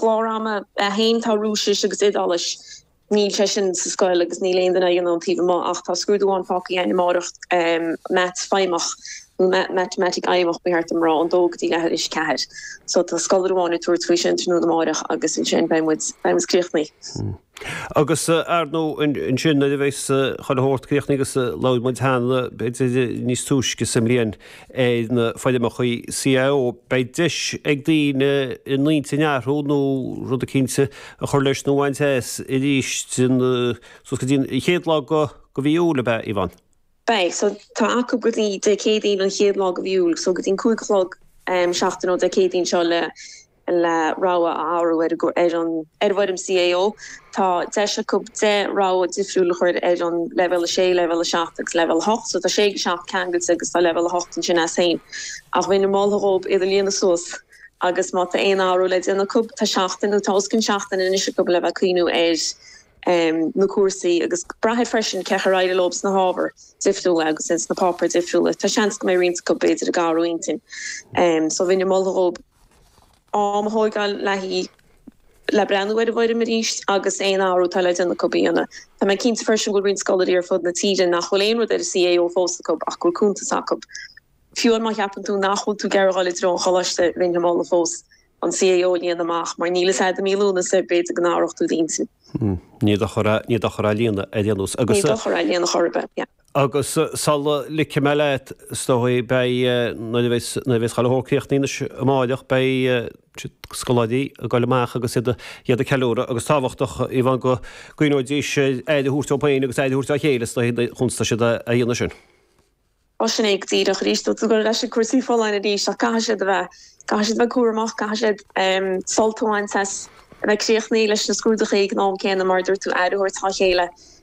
gclár ama. 1 Tá Rúisis agus Iodáilis. Níl sé sin sa scoil agus níl aon duine ag an an taobh amuigh ach tá scrúdú amháin fágtha againn amáireach, Mata Fheidhmeach, nó Matamaitic Fheidhmeach, ba cheart dom a rá, ón dó go dtí leath tar éis a ceathair. So tá scoláire amháin ag tabhairt faoi sin tráthnóna amárach agus ansin beidh muid, beidh muid críochnaithe. Agus, ar ndóigh, ansin, nuair a bheas chuile shórt críochnaithe, agus labhair muid cheana, b'fhéidir, níos túisce sa mbliain, faoi na foirmeacha CAO, beidh deis ag daoine a n-intinn a athrú nó rud eicínt a chur leis nó a bhaint as arís suas go dtí an chéad lá de mhí Iúil, ab ea, Yvonne? Beidh. So, tá acu go dtí Dé Céadaoin an chéad lá de mhí Iúil, so go dtí an cúig a chlog seachtain ó Dé Céadaoin seo le le rogha a athrú ar an bhfoirm CAO. Tá deis acu 10 rogha difriúil a chur ar an leibhéal 6, leibhéal 7 agus leibhéal 8. So tá 6-7 ceangailte agus tá leibhéal 8 ansin as féin. Ach bheinn ag moladh dhóibh iad a líonadh suas agus má tá aon athrú le déanamh acu, tá seachtain nó tá os cionn seachtaine anois acu le bheith ag cuimhniú ar na cúrsaí agus braithfidh freisin cén chaoi ar éirigh leob sna hábhair difriúla agus sna páipéir difriúla. Tá seans go mbeidh roinnt acu b'fhéidir ag athrú intinn. So bheinn ag moladh dhóibh. am a thógáil le haghaidh le breathnú ar an bhfoirm arís agus aon athrú atá le déanamh acu a dhéanamh. Tá mé cinnte freisin go bhfuil roinnt scoláirí ar fud na tíre nach bhfuil aon rud ar an CAO fós acu ach go bhfuil cuntas acu. Fiú má cheapann tú nach bhfuil tú ag iarraidh a dháil i dtreo an choláiste, bheinn ag moladh fós an CAO a líonadh amach mar níl a fhios agat i mí Lúnasa b'fhéidir go n-athródh tú d'intinn. Níl dochar á líonadh ar aon nós. Níl dochar á líonadh chor ar bith. Agus sula ligfidh mé leat, is dóigh, beidh, nuair a bheas, nuair a bheas chuile shórt críochnaithe anois amáireach, beidh siad, scoláirí, ag goil amach agus iad, iad ag ceiliúradh agus tábhachtach é a Yvonne go gcuimhneoidís ar aire a thabhairt dóibh féin agus aire a thabhairt dá chéile, is dóigh, chúns atá siad a dhéanamh sin. Á sin é go díreach, arís, ag dul ar ais ag cúrsaí folláine arís ach caithfidh siad a bheith, caithfidh siad a bheith cúramach, caithfidh siad sult a bhaint as, a bheith críochnaithe leis na scrúduithe ag an am céanna mar a dúirt tú, aire a thabhairt dhá chéile.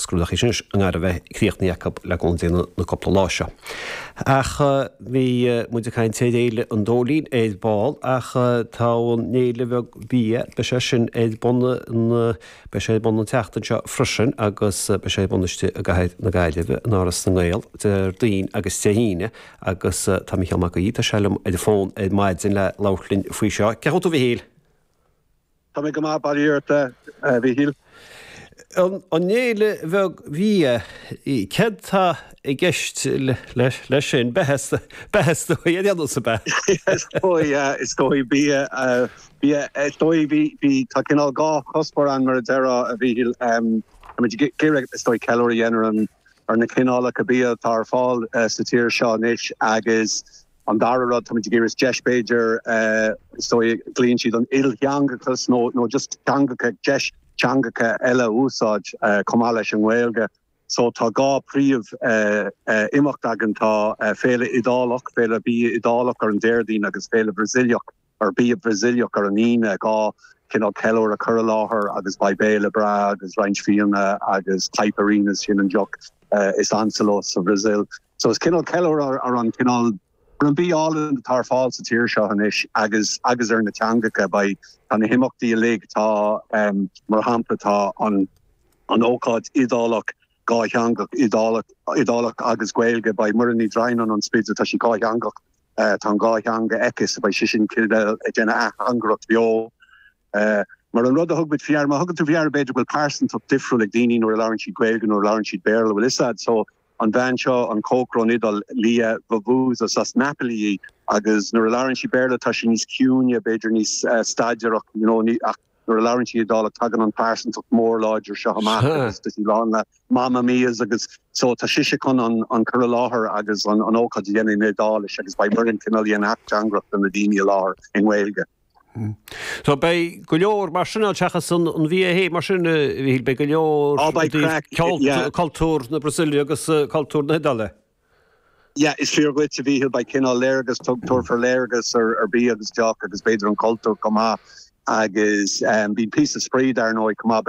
scrúduithe sin i ngar a bheith críochnaithe acu le cúnamh Dé sna cúpla lá seo. Ach bhí muid ag caint ar Fhéile an Dóilín ar ball ach tá an fhéile bheag bhia, beidh sé sin ar bun an, beidh sé ar bun an tseachtain seo freisin agus beidh sé ar bun istigh i gcathair na Gaillimhe, in Áras na nGael, Déardaoin agus Dé hAoine agus tá Mícheál Mac Aoidh, tá sé liom ar an bhfón ar maidin le labhairt linn faoi seo. Cén chaoi a bhfuil tú a Mhichíl? Tá mé go maith, bail ort, a Mhichíl. An Fhéile Bheag Bhia, céard tá i gceist leis sin? Beatha is dóigh, ar aon nós beatha? Is dóigh, is dóigh, bia, bia, is dóigh, bhí, bhí, tá cineál dhá chuspóir ann mar a déarfá, a Mhichíl. Tá muid ag iarraidh, is dóigh, ceiliúradh a dhéanamh ar na cineálacha bia atá ar fáil sa tír seo anois agus, An dara rud, táimid ag iarraidh deis b'fhéidir, is dóigh glaonn siad an t-iltheangachas nó nó just teangacha, deis teangacha eile a úsáid chomh maith leis an nGaeilge. So tá dhá phríomh eh imeacht againn, tá eh Féile Iodálach, Féile Bia Iodálach ar an Déardaoin agus Féile Bhrasaíleach ar bia Brasaíleach ar an Aoine, dhá chineál ceiliúradh cur i láthair agus beidh béile breá agus roinnt fíona agus caipirinhas, sin í an deoch is ansa leo sa Bhrasaíl. So is cineál ceiliúradh ar an cineál, ar an bia álainn atá ar fáil sa tír seo anois agus agus ar na teangacha. Beidh, tá na himeachtaí uilig, tá ehm mar shampla tá an an ócáid Iodálach, dátheangach, Iodálach, Iodálach agus Gaeilge, beidh Muireann Ní Dhroighneáin ón Spidéal, tá sí dátheangach, Tá an dhá theanga aici, so beidh sise cineál ag déanamh ateangaireacht bheo. Mar an rud a thug muid faoi deara, má thugann tú faoi deara b'fhéidir go bhfuil pearsantacht difriúil ag daoine nuair a labhrann siad Gaeilge, nuair a labhrann siad Béarla, bhuel is a'd, so an bhean seo, an cócaire ón Iodáil, Lia, vuvuzas as Napoli í agus nuair a labhrann sí Béarla tá sí níos ciúine, b'fhéidir níos staidéarach, you know, ach. Nuair a labhrann sí Iodálach tagann an pearsantacht mór láidir seo amach agus tá sí lán le Mamma Mia's agus so tá sise chun an cur i láthair agus an ócáid a dhéanamh in Iodáilis agus beidh Muireann cineál ag déanamh ateangaireacht do na daoine i láthair i nGaeilge. So beidh go leor mar sin ann seachas an bheatha mar sin a Mhíchíl, beidh go leor i dtaobh cultúr na Brasaíle agus cultúr na hIodáile. Yeah, is fíor dhuit, a Mhíchil, beidh cineál léargas tugtha, tabharfar léargas ar bia agus deoch agus b'fhéidir an cultúr chomh maith agus bíonn píosa spraoi dar ndóigh chomh maith.